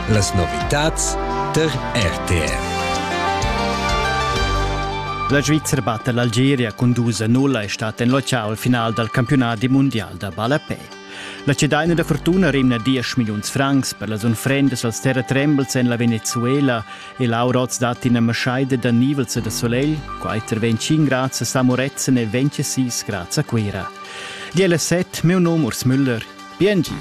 Las novitads tar RTR. La Svizzera batte l'Algeria cun dus a nulla è stata en locale al final dal campionat mundial da ballapè. La cedaina da fortuna rimna 10 milliuns francs per las unfrendas als terra trembles en la Venezuela e l'aur oz dat ina maschaida da nivelza da solegl, quater 25 grads a Samoretzen e 26 grads a Cuira. Di alla set, meu nom Urs Müller, Biengi.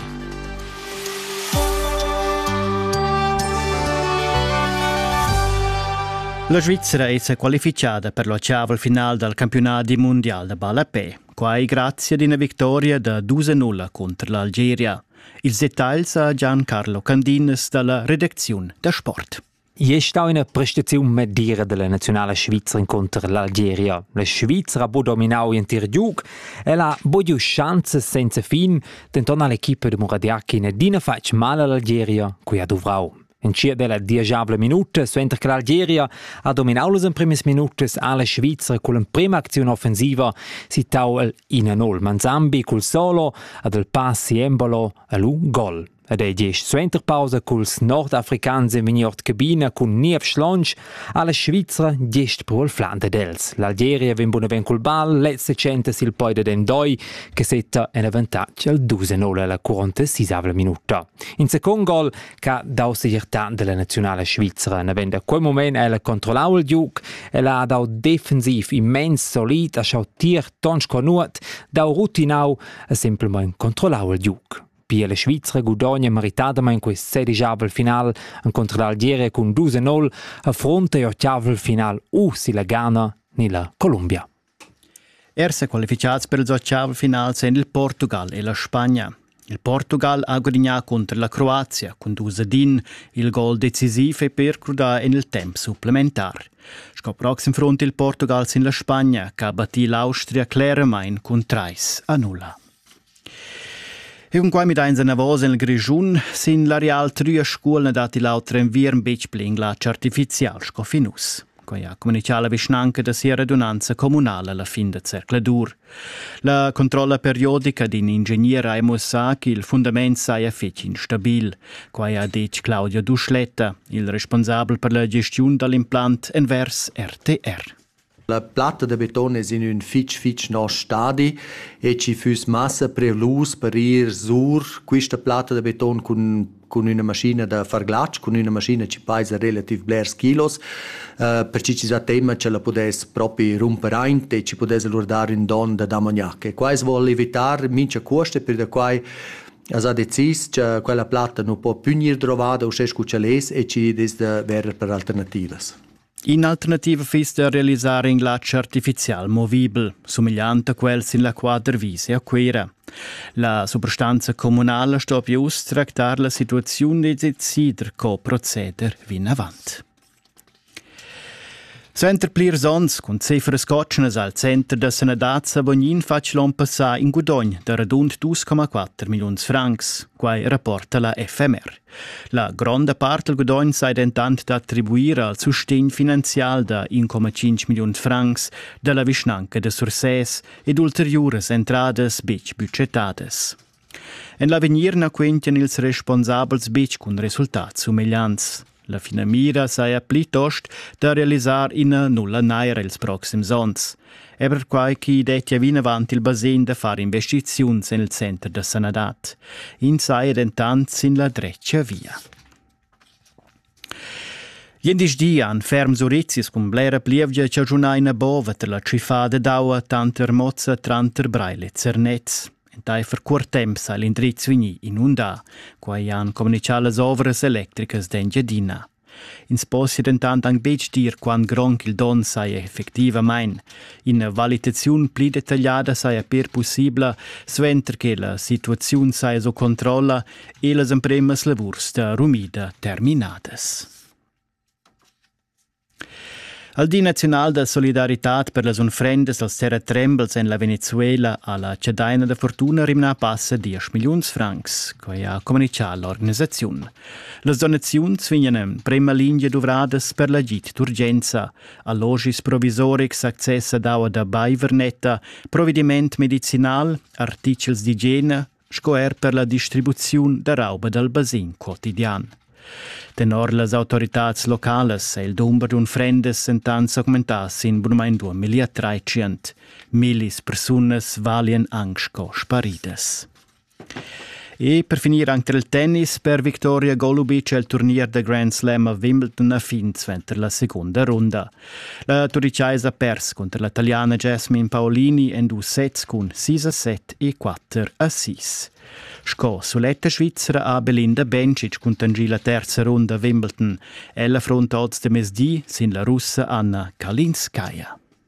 La Svizzera è qualifichada per l'oceaval final dal campionat mondial da ballapè, quai grazie ad una vittoria da 2-0 contro l'Algeria. Il dettail sa Gian Carlo Candinas dalla redaziun da sport. Igl è stà ina prestaziun medira della naziunala svizra inconter l'Algeria. La Svizra ha bo dominau l'entir giug e ha bo giu schanzas senza fin, denton ha l'equipa de Muradiachin adina fatg mal all'Algeria, cui ha duvrau. In cia della diagiabla minuta, suenter che l'Algeria ha dominau las emprimas minutas, ha la Svizra con l'emprema aczione offensiva sittau il 1-0. Manzambi col solo ad il pass Embolo e lu gol. Ed ei gest suenter pausa culs nordafricans ein vegni ord cabina cun niev schlonsch alla Svizra gest pro il flan dad els. L'Algeria vegn bunaven cul bal, lezza tschenta sil poi dad Endoi che setta en avantatg al 2-0 alla 46 minuta. In second gol che ha dau segirtà della nazionala svizra. Navend a quel moment el controllau il giuc, el ha dau defensiv immens solid, ha schau tier tons conurt, dau rutinau e simpelmein controllau il giuc. Pia la Svizra gudogna meritadamain quest sedijavel final encontro d'Algiere cun 2-0 a fronte e ottavel final u si la Ghana ni la Columbia. Er se qualificads per ils ottav finals en il Portugal e la Spagna. Il Portugal ha gudignà contro la Croazia cun Dusadin il gol decisiv e per crudà en il temp supplementar. Sco proxim front il Portugal sin la Spagna, che ha battì l'Austria cleramain cun 3 a 0. E cun quai midains enavos nel Grischun sin l'areal Trüa Scuolna datti l'auter enviern betg pli inglats artificial sco fin uss. Quai ha communichà la vischnanca da sia redunanza communala la fin da zercladur. La controlla periodica d'in ingegner ha muossà ch'il fundament saja fetg instabil. Quai ha detg Claudia Duschletta, il responsabel per la gestiun dal implant envers RTR. La platta da beton es in ün fich fich nosch stadi e ci füss massa prelus per ir sur quista platta da beton cun cun üna maschina da far glatsch, cun üna maschina chi paisa relativ blers kilos, uh, perche chi s'ha temma cha la pudess propi rumper aint e chi pudess alura dar ün don da damognac. E quai as voul evitar mincha cuost e pür da quai as ha decis cha quella platta nu po pü gnir drovada uschè scu ch'el es e chi dess da verer per alternativas. In'alternativa fiss da realisar in glatsch artifizial movibel, sumigliant a quel sin la quadra Wiese a Cuira. La suprastanza communala stoppia uss tractar la situaziun e decider co proceder vinavant. Suenter plirs onns cun cifras cotschnas al center da sanadad sa Bognin fatg l'on passà in gudogn da radund 2,4 milliuns francs, quai rapporta la FMR. La gronda part del gudogn sei dentant da attribuir al sustegn finanzial da 1,5 milliun francs dalla vischnanca de Sursès ed ulteriuras entradas betg budgetadas. En l'avegnir na quentian ils responsabels betg cun resultats sumegliants. La finamira saja plitost da realisar ina nulla naira ils proxims onns. e perquai chi dettia vinavant il basegn da far investiziuns en il center da sanadad. Ins saja dentant sin la dretga via. Gliendisdi han ferms urizis cun blera plievgia chaschunà ina bova tar la tschiffada d'aua tanter Mozza tranter Breil e Zernez. Entaifer cuort temps ha l'indriz vegnì inundà. Quai han communichà las ovras electricas d'Engiadina. Ins possia dentant anc betg dir quant grond ch'il donn saja effectivamain. Ina valitaziun pli detagliada saja per pussibla, suenter che la situaziun saja sco controlla e las empremas lavurs da rumida terminadas. Al Di naziunal da solidaritad per las unfrendas als terratrembels en la Venezuela ha la cedaina da fortuna rimnà passa 10 milliuns francs. Quai ha communitgà l'organisaziun. Las donaziuns vegnan prema lingia duvradas per l'agid d'urgenza, allogis provisorics, access ad aua da baivernetta, provediment medicinal, artichels d'igiena, sco er per la distribuziun da rauba dal basin quotidian. Tenor las autoritads localas è il dumber d'unfrendas entant s'augmentà sin bunamain 2013. Millis persunas valian anc sco sparidas. E per finir anche il tennis per Victoria Golubic el turnier da Grand Slam a Wimbledon a fin suenter la seconda runda. La turichaisa pers cunter la taliana Jasmine Paolini en dus sets cun 6 a 7 e 4 a 6. Sco suletta svizra ha Belinda Bencic cuntangi la terza runda a Wimbledon. Ella affronta oz de mezdi sin la russa Anna Kalinskaya.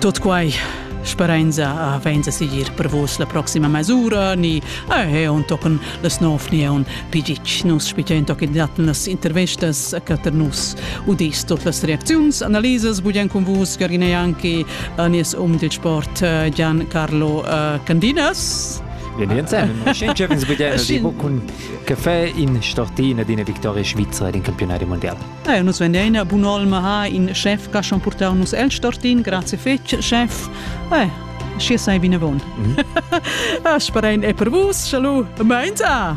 Tot quai sperenza a venza sigir per vos la proxima mesura ni eh on tochen las nov ni on pigic nus spigen toc datten las intervestas che ter nus udis tot las reacziuns analises bugen con vus Gergine Janki Anis um del sport eh, Gian Carlo eh, Candinas cun caffè in stortina d'ina victoria svizra ed in campionato mondiale Eir nus vegnein bun'olma ha in chef ca schon purtau nus el stortin, grazie fetg chef. Eh, schi sei vinavon. Mm. As sparein e per vus, chalu, meins a!